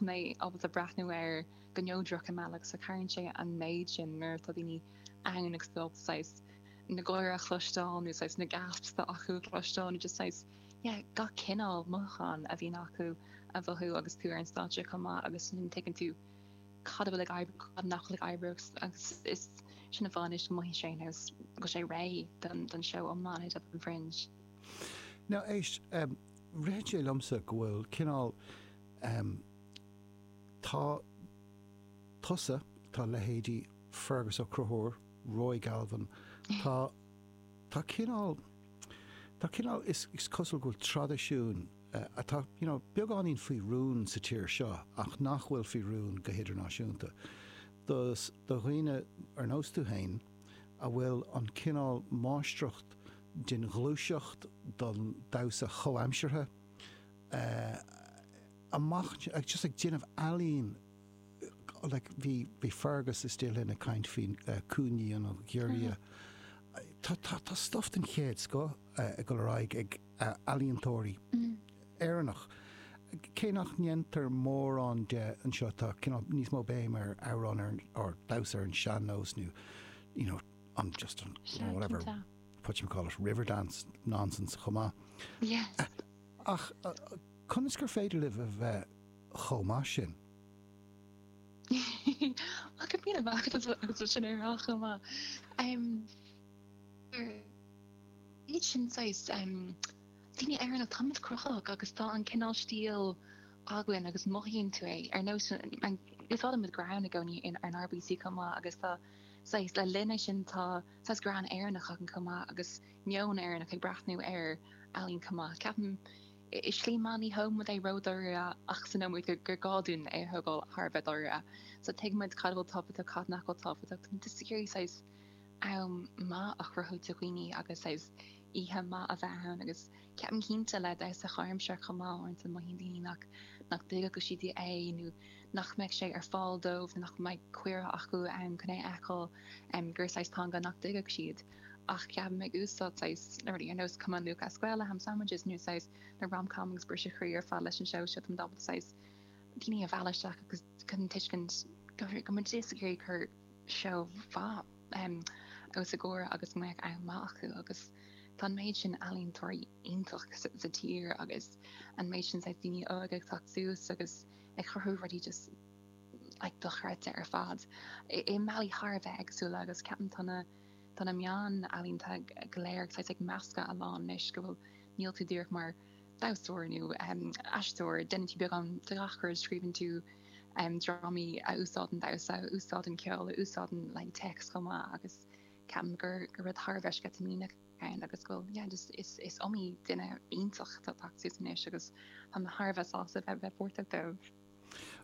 mé ábalta breathnú air go neodrach i mbealach agus cabhraíonn sé an méid sin nuair atá daoine ann agus tú ábalta saghas na gáire a chloisteáil nó saghas na gasps atá acu a chloisteáil nó just saghas yeah gach cineál mothúchán a bhíonn acu a mhothú agus tú ar an stáitse chomh maith agus sin tuigeann tú cad atá ag oibriú cad nach bhfuil ag oibriú agus is sin a bhraitheas go mothaíonn sé go bhfuil sé réidh don don seo ó mBaile Átha Cliath Fringe. Now éist um, ritheann sé liomsa go bhfuil cineál Um tá tusa, tá leithéidí Fearghus Ó Conchúir, Roy Galvin, tá, tá cineál, tá cineál, is cosúil go bhfuil traidisiún atá, you know, beagáinín faoi rún sa tír seo ach nach bhfuil faoi rún go hidirnáisiúnta, do, do dhaoine ar nós tú fhéin a bhfuil an cineál máistreacht den ghluaiseacht, den damhsa chomhaimseartha, amach just ag déanamh ealaín like bhí bhí Fearghus istigh linn ag caint faoi Cúinne an Ghiorria tá tá tá stuff den chéad scoth ag dul ar aghaidh ag ealaíontóirí Éireannach cé nach ndéantar mórán de anseo tá cineál níos mó béim ar amhrán nó ar damhsa ar an sean-nós nó you know an just an whatever whatchamacallit Riverdance nonsense chomh maith. Ach conas gur féidir libh a bheith chomh maith sin? Ceapaim go mbaineann sé sin ar ais chomh maith. Mar ndóigh sin saghas mar daoine Éireannacha, tá muid cruthaitheach agus tá an cineál stíl againn agus mothaíonn tú é. Ar nós an, úsáideann muid greann i gcónaí ar an RBC chomh maith agus tá saghas le linne sin tá saghas greann Éireannach againn chomh maith agus, meon Éireannach ag breathnú ar ealaín chomh maith. Ceapaim i slí maith ní thógann muid é ró-dáiríre ach smaoiníonn muid gur gá dúinn é a thógáil thar a bheith dáiríre. So tuigeann muid cad a bhfuil tábhachtach cad nach bhfuil tábhachtach. Just ag iarraidh saghas am maith a chruthú do dhaoine agus saghas oíche maith a bheith ann agus ceapaim cinnte le damhsa comhaimseartha chomh maith uaireanta mothaíonn daoine nach nach dtuigeadh siad é nó nach mbeadh sé ar fáil dóibh nó nach mbeadh cuireadh acu ann chun é a fheiceáil um, gur saghas teanga nach dtuigeadh siad. ach ceapaim ag úsáid saghas na rudaí ar nós Come on Luke as Gaeil le ham sandwiches nó saghas na rom-com agus briseadh croí ar fad leis an seó seo is bealach saghas daoine a mhealladh isteach agus an tuiscint go bhfuil muid just ag iarraidh cur seó mhaith os a gcomhair agus go mbeadh am maith acu agus tá an méid sin ealaíontóirí iontach sa tír agus an méid sin saghas daoine óige ag teacht suas agus ag cruthú rudaí just like dochreidte ar fad i mbealaí thar a bheith éagsúla agus ceapaim tá na Tá na meáin ealaíonta go léir ag, saghas, ag meascadh a lán anois go bhfuil, níl tú díreach mar damhsóir nó aisteoir, déanann tú beagán de gach rud, scríobhann tú drámaí a úsáideann damhsa, a úsáideann ceol, a úsáideann like téacs chomh maith agus ceapaim gur rud thar a bheith sceitimíneach é ann agus go bhfuil, yeah, just is, is iomaí duine iontach atá tagtha suas anois agus tá mé thar a bheith sásta a bheith, bheith páirteach leo.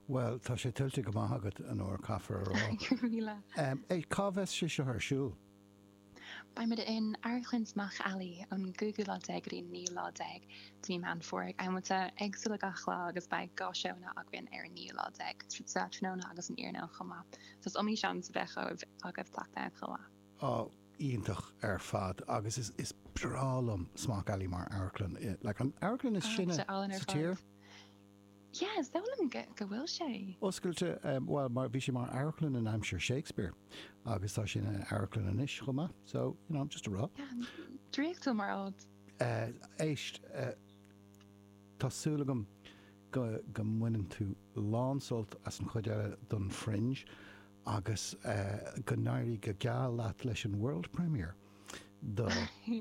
Bhuel, tá sé tuillte go maith agat, Anor, caithfear a rá. Go raibh míle. Cá mbeidh sé seo ar siúl? Beimid in Amharclann Smock Alley ón gcúigiú lá déag go dtí an naoú lá déag de mhí Meán Fómhair, ag amanta éagsúla gach lá, agus beidh dhá seóanna againn ar an naoú lá déag, sa tráthnóna agus san iarnóin chomh maith, so is iomaí seans a bheidh agaibh teacht ann chomh maith. Á, iontach ar fad, agus is breá liom Smock Alley mar amharclann, like an amharclann is sine sa tír. Yeah, is dóigh liom go bhfuil sé. Oscailte, bhuel, mar, bhí sé mar amharclann in aimsir Shakespeare agus tá sé ina amharclann anois chomh maith, so, you know, just a rá. Draíochtúil mar áit. Eh, éist, eh, tá súil agam go, go mbaineann tú lánsult as an chuid eile den Fringe agus, eh, go n-éirí go geal leat leis an World Premiere. de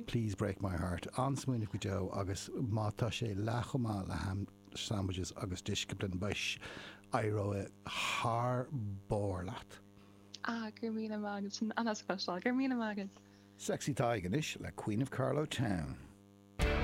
Please Break My Heart, an-smaoineamh go deo agus má tá sé leath chomh maith le Ham Sandwiches and Discipline beidh éireoidh thar barr leat. Ah, go raibh míle maith agat, sin an-deas a chloisteáil, go raibh míle maith agat! Sexy Tadhg anois le Queen of Carlow Town.